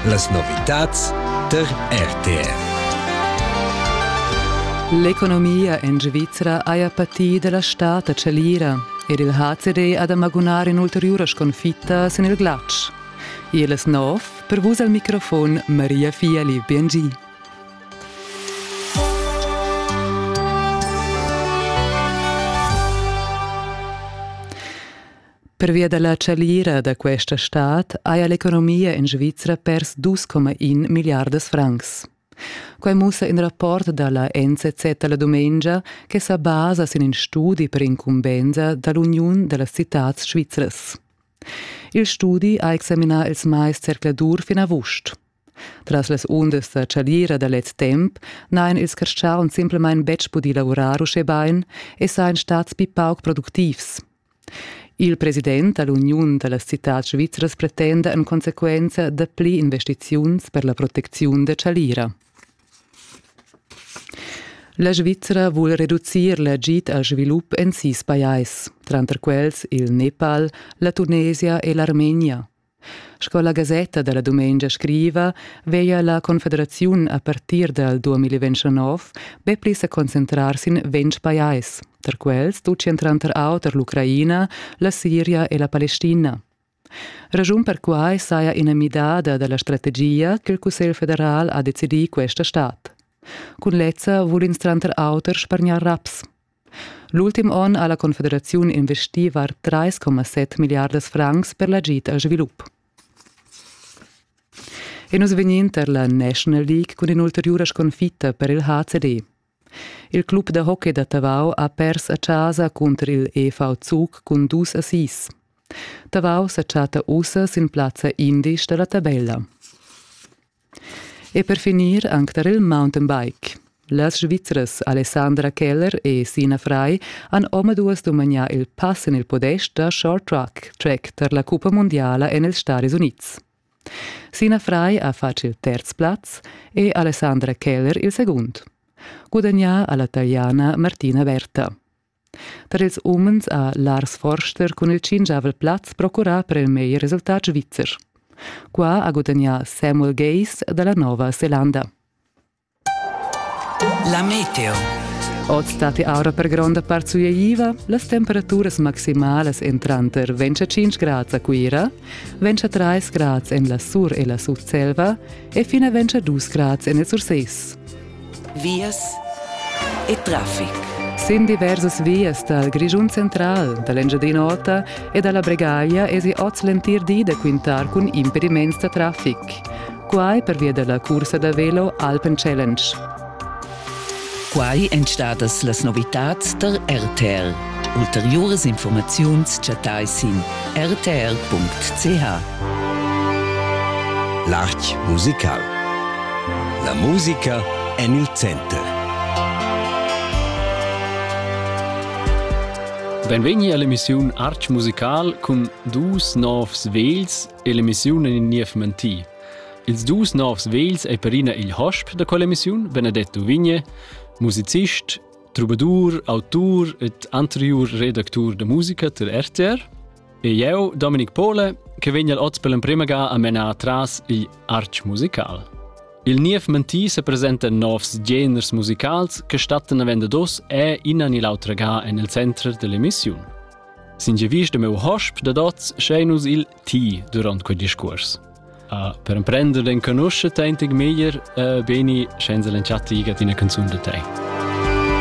Las novitads tar RTR. L'economia en Svizra haja patì da la stad a Chalira ed il HCD ha da magunar in'ulteriura sconfitta sin il glatsch. Iles nov, per vus al microfon Maria Fiali BNG. Pervia dalla chagliira da questa stad haja l'economia in Svizra pers 2,1 milliardas francs. Quai mussa in rapport da la NZZ la dumengia che sa basa sin in studi per incumbensa dall'Uniun da las citads svizras. Il studi ha examinà ils mais zercladur fin avust. Tras las undas da chalira da lez temp n'hain ils carstgauns simplamain betg pudì lavurar uschè bain e sajan stads pli pauc productivs. Il president da l'uniun da las citads svizras pretenda en consequenza dapli investiziuns per la protecziun da chalira. La Svizra vul reducir l'agid al svilup en sis pajais, tranter quels il Nepal, la Tunesia e l'Armenia. Sco la gasetta dalla dumengia scriva, veia la Confederaziun a partir dal 2029 be pli sa concentrar sin ventg pajais, tar quels tutgian tranter auter l'Ucraina, la Siria e la Palestina. Raschun per quai saja ina midada da la strategia ch'il Cussegl federal ha decidì questa stad. Cun lezza vul ins tranter auter spargnar raps. L'ultim onn ha la Confederaziun investì var 3,7 milliardas francs per l'agid al svilup. E nus vegnin tar la National League cun in'ulteriura sconfitta per il HCD. Il club da hockey da Tavau ha pers a chasa cunter il EV Zug cun dus assis. Tavau sa chatta ussa sin plazza indisch da la tabella. E per finir anc tar il mountainbike. Las Svizras Alessandra Keller e Sina Frei han omaduas dumagnà il pass en il podest da short track, track tar la cuppa mundiala en ils Stadis Unids. Sina Frei ha fatg il terz plaz e Alessandra Keller il segund. Gudagnà ha la Taliana Martina Berta. Per ils umens ha Lars Forster cun il tschinchavel plaz procurà per il meglier resultat svizzer. Qua ha gudagnà Samuel Gays da la Nova Zelanda. La meteo. Oz stati aura per gronda part sueiva, las temperaturas maximalas èn tranter 25 grads a Cuira, 23 grads en la Sur e la Sutselva e fina 22 grads en il Surses. vias e traffic. Sin diversas vias dal Grischun central, da l'Engiadin'Ota e da la Bregaglia esi oz l'entir di da quintar cun impediments da traffic. Quai pervia da la cursa da velo Alpen Challenge. Quai èn stadas las novitads tar RTL. Ulteriuras infurmaziuns chattai sin rtr.ch. L'art musical. La musica en il center. Benvegni all'emissiun Arch Musical cun dus novs vegls e l'emissiun en in niev mentì. Ils dus novs vegls ei perina igl hosp da quell'emissiun, Benedetto Vigne, musicist Troubadour, autur ed anteriur redactur da musica tar RTR. E eu, Dominic Pole, che vegn al oz per l'emprema ga a menar tras il arch musical. Il niev mentì se presenta novs geners musicals che stattan a vender dos e innan il autra ga en il center dell'emissiun. Singe vis de meu hosp da dots sceinus il ti durant quel discurs. Uh, per emprender den conosce teintig meglier uh, beni senza l'enchatti gat ina canzun da te.